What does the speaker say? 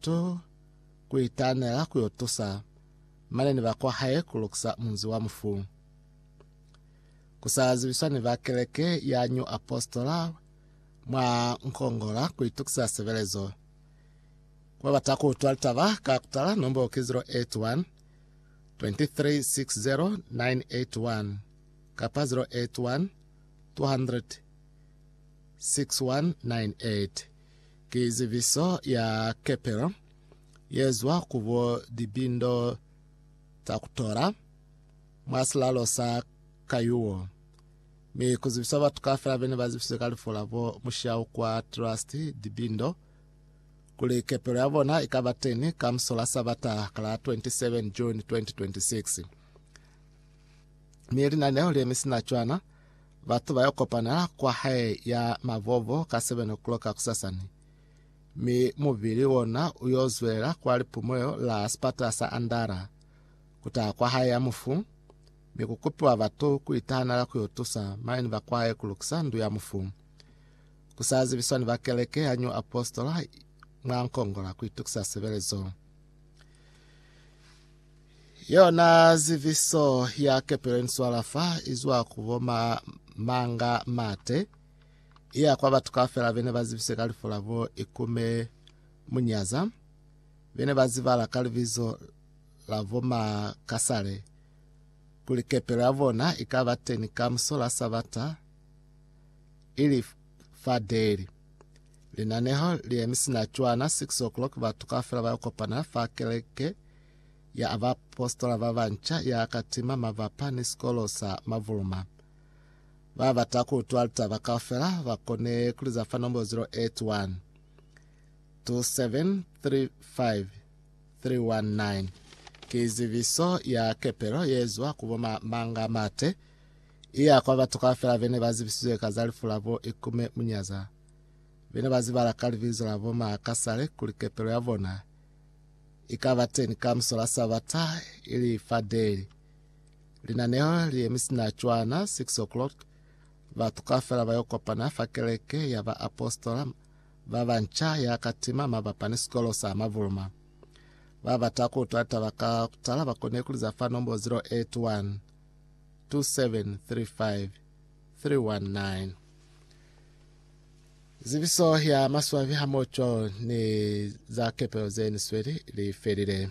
to ku itaanela ku yo tusa mane ni ba kwa hae ku lukisa munzi wa mufu. Ku sa zibiswa ni ba keleke ya New Apostola mwa Nkongola ku itukisa sebelezo. Ku ba bata ku utwa litaba, ka kutala nombolo ki 081 2360981 kapa 081 200 6198. Ki zibiso ya kepelo ye zwa ku bo libindo za ku tola mwa silalo sa Kayuo, mi ku zibiswa batu kaufela bene ba zibisizwe ka lifu la bo Mushau kwa Trust Libindo kuli kepelo ya bona i ka ba teni ka muso la Sabata ka la 27 June 2026. Mi linaneo le mi sina cwana Batu ba yo kopana kwa hae ya mabobo ka 7 o'clock kusasani, mi mubili wona u yo zwelela kwa lipumulo la sipata sa Andara. Ku taha kwa hae ya mufu, mi ku kupiwa batu ku itahanela ku yo tusa maine ba kwa hae ku lukisa ndu ya mufu. Ku sa zibiswa ni ba keleke ya New Apostle mwa nkongola ku itukisa sebelezo. Yona ziviso ya kepelo ni swala fa izwa ku bo ma, manga mate iya kwa batu kaufela bene ba zibise ka lifu la bo ikume munyaza bene ba zibala ka libizo la bo ma kasale kuli kepelo ya bona ikaba teni ka musola sabata ili fa daily linaneho li emisina cwana 6 o'clock batu kaufela ba kopana fa keleke ya a baapositola ba banca ya ka tima mabapa ni sikolo sa mavuluma. Ba bata ku utwa litaba kaufela ba kone ku liza fa nombo 081 2735 319. Ki zibiso ya kepelo ye zwa ku bo ma Manga Mate, i ya kwa batu kaufela bene ba zibisizwe ka za lifu la bo Ikume Munyaza. Bene ba zibala ka libizo la bo ma Kasale kuli kepelo ya bona i ka ba teñi ka muso la Sabata, ili fa deli. Linaneo li yemi sina cwana, 6 o'clock, batu kaufela ba yo kopana fa keleke ya ba apostola ba banca ya ka tima mabapa ni sikolo sa Mavuluma. Ba bata ku utwa litaba ka kutala ba kone ku liza fa nombo 081 2735 319. Zibiso ya maswabi hamoco ni za kepelo ze ni sweli li felile.